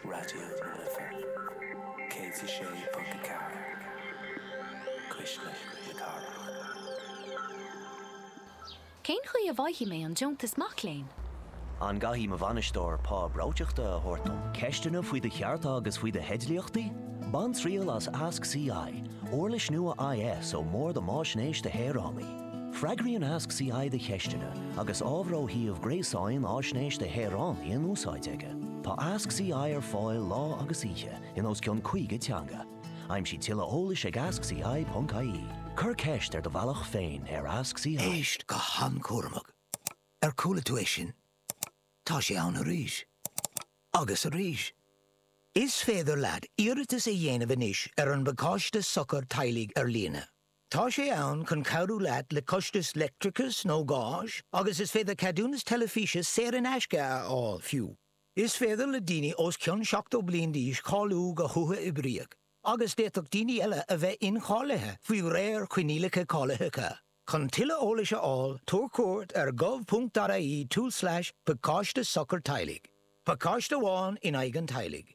Raidió na Life 106.4 Cuisle na Cathrach. Cén chaoi a bhfaighidh mé an deontas mac léinn? An gcaithfidh mo bhainisteoir pá breoiteachta a thabhairt dom? Ceisteanna faoi do chearta agus faoi do theidlíochtaí? Bain triail as Ask CI, uirlis nua IS ón mBord um Fhaisnéis do Shaoránaigh. Freagraíonn Ask CI do cheisteanna agus ábhar ó shuíomh gréasáin Fhaisnéis do Shaoránaigh in úsáid aige. Tá Ask CI ar fáil lá agus oíche in os cionn 50 teanga. Aimsigh tuilleadh eolais ag askci.ie. Cuir ceist ar do bhealach féin ar Ask CI. Éist go han-chúramach. Ar chuala tú é sin? Tá sé ann arís. Agus arís. Is féidir leat iarratas a dhéanamh anois ar an bPacáiste Sochar Teaghlaigh ar líne. Tá sé ann chun cabhrú leat le costais leictreachais nó gáis agus is féidir ceadúnas teilifíse saor in aisce a fháil, fiú. Is féidir le daoine os cionn 70 bliain d'aois cáiliú go huathoibríoch agus d'fhéadfadh daoine eile a bheith incháilithe faoi réir coinníollacha cáilitheacha. Chun tuilleadh eolais a fháil, tabhair cuairt ar gov.ie tulslais pacáiste sochar teaghlaigh. Pacáiste amháin in aghaidh an teaghlaigh.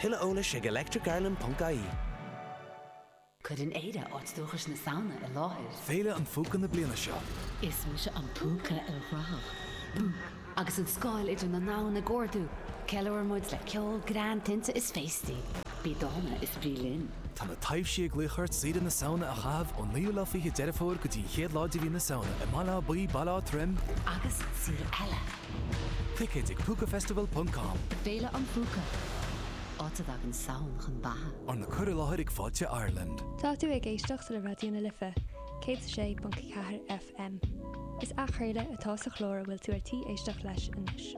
Tuilleadh eolais ag electricireland.ie. Cuireann Éire áit dúchais na Samhna i láthair. Féile an Phúca na bliana seo. Is mise an Púca ilchruthach. Agus an scáil idir na ndomhan ag ardú, ceiliúrann muid le ceol, greann, tinte is féastaí. Bí dána is bí linn. Tá na taibhsí ag glaoch ort saoire na Samhna a chaitheamh ón naoú lá fiche Deireadh Fómhair go dtí an chéad lá de mhí na Samhna i mBaile Átha Buí, Baile Átha Troim, agus saol eile Ticéid ag Púcafestival ponc com. Féile an Phúca, áit a dtagann Samhain chun beatha. Arna cur i láthair ag Fáilte Ireland. Tá tú ag éisteacht le Raidió na Life, 106.4 FM. Is athchraoladh atá sa chlár a bhfuil tú ar tí éisteacht leis anois.